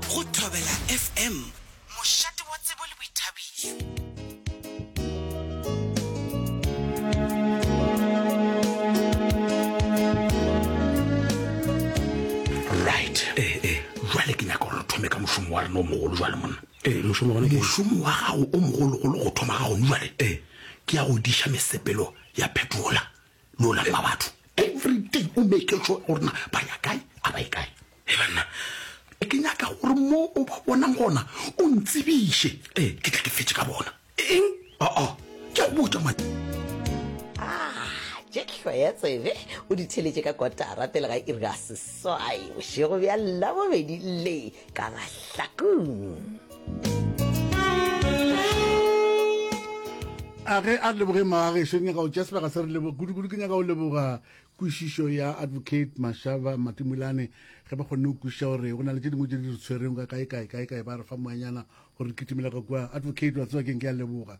Go Thobela FM, mošate wa tsebo le boithabišo. Right. Eh, eh. Jwale ke nyaka gore thome ka mošomo wa rena o mogolo jwale monna. Eh, mošomo wa mošomo wa gago o mogologolo go thoma ga gone jwale. Eh, ke ya go diša mesepelo ya phetola. no lalela batho every day o make sure gore na ba ya kae a ba e kae e banna e ke nyaka gore mo o ba bonang gona o ntsebiše ee ke tla ke fetse ka bona eng aa ke a botsa ma tšehlo ya tsebe o di theletše ka kotara pele ga iri ya seswai bošego bja labobedi le ka mahlakong a ge a leboge magageso nyaka o tša sebaka se re leboga kudu-kudu ke nyaka o leboga kwešišo ya advocate mashaba matimolane ge ba kgonne go kwešiša gore go na le tše dingwe tše di re tshwereng ka kae kae kae kae ba re fa moanyana gore re kitimela ka kua advocate wa tsewa keng ke a leboga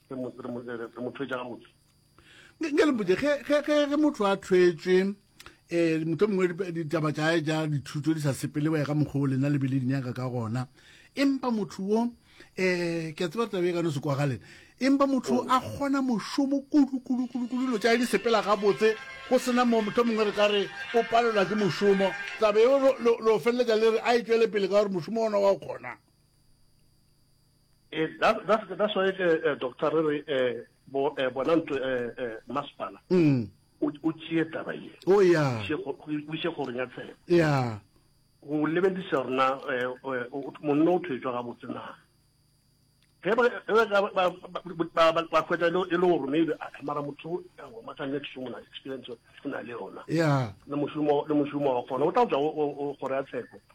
re mo re mo re mo thwetša ga motse nke le mpotse ge ge ge ge motho a thwetswe um eh, moto mongwe ditaba tša ja dithuto di sa sepele wa ga mokgwa o lena le bele dinyaka ka gona empa motho wo um ke a tseba tabe e ka no se kwagalen empa motho a kgona mošomo kudukudukudukudu dilo tša di sepela gabotse go sena mo motho mongwe re ka re o palelwa ke mošomo tabe eo lo feleletša le re a e tšwele pele ka gore mošomo ona wa o kgonang E, that, that, that's why ke eh, doctor re re eh, bo eh, bona ntlo eh, eh, masepala Mm. o o tšee taba ye o ya Še go- go- o ise goreng ya tshepo ya go lebelisa rona eh, eh, o- o- monna o thwetswa gabotse na ge ba- ge ba- ba- ba- ba- ba- ba hwetša e le- e le gore maybe a mara motho makanne ke sengwe na experience o na le yona ya le mošomo le mošomo wa kgona o tla tswa o- o- o kgoro ya tsheko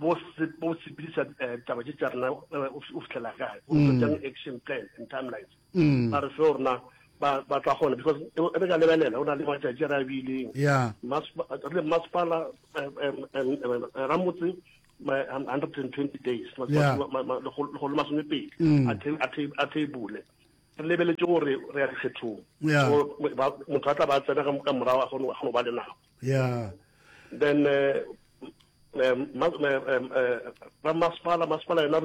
bo bo sepedisa taba tše tša rena o fihlela kae o tlo jang action plan and timelines ba re seo rena ba ba tla gona because e re ka lebelela o na le matšatši a re a beileng re masepala ramotse hundred and twenty days lekgolo masome pedi a theibole re lebeletse gore re ya dikgethong motho a tla ba tsena ka morago a kgone go ba le nako yeah then uh, masepala masepala yona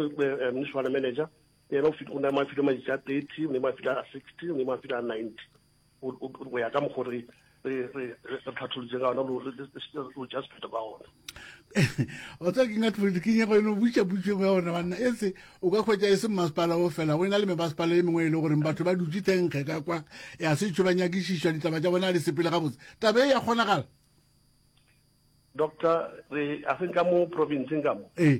municipal manager yena o ne ma file matšatši a thirty o ne ma file a sixty o ne ma file a ninety go ya ka mokgore re tlhatholotse ka ona lo just pheta ka ona o tsa ke nga tloedi ke nyego eno butša putšo engwe ya gore banna e se o ka kgwetsa e se mmasepala o fela go e na le mebasepala e mengwe e le goreng batho ba dutse thenkge ka kwa ya setšho ba nyakišišwa ditaba tša bona a di sepele gabotse taba e ya kgonagala doctor re a se ka mo provinceng ka mo ee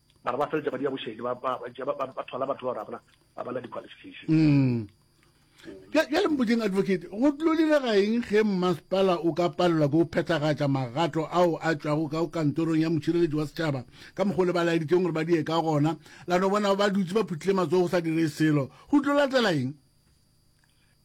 Mara ba feletša ba dia bošedi, ba ba ba tšea ba ba thola batho ba rabana ba bana di-qualification. Mm. Bja- Bjale mpotšeng advocate, go tlo direga eng ge mmasepala o ka palelwa ke go phethagatša magato ao a tšwago ka go kantorong ya motšhireletši wa setšhaba ka mokgwa o le ba laeditšeng gore ba die ka gona, la no bona ba dutše ba phuthile matsogo go sa direge selo? Go tlo latela eng?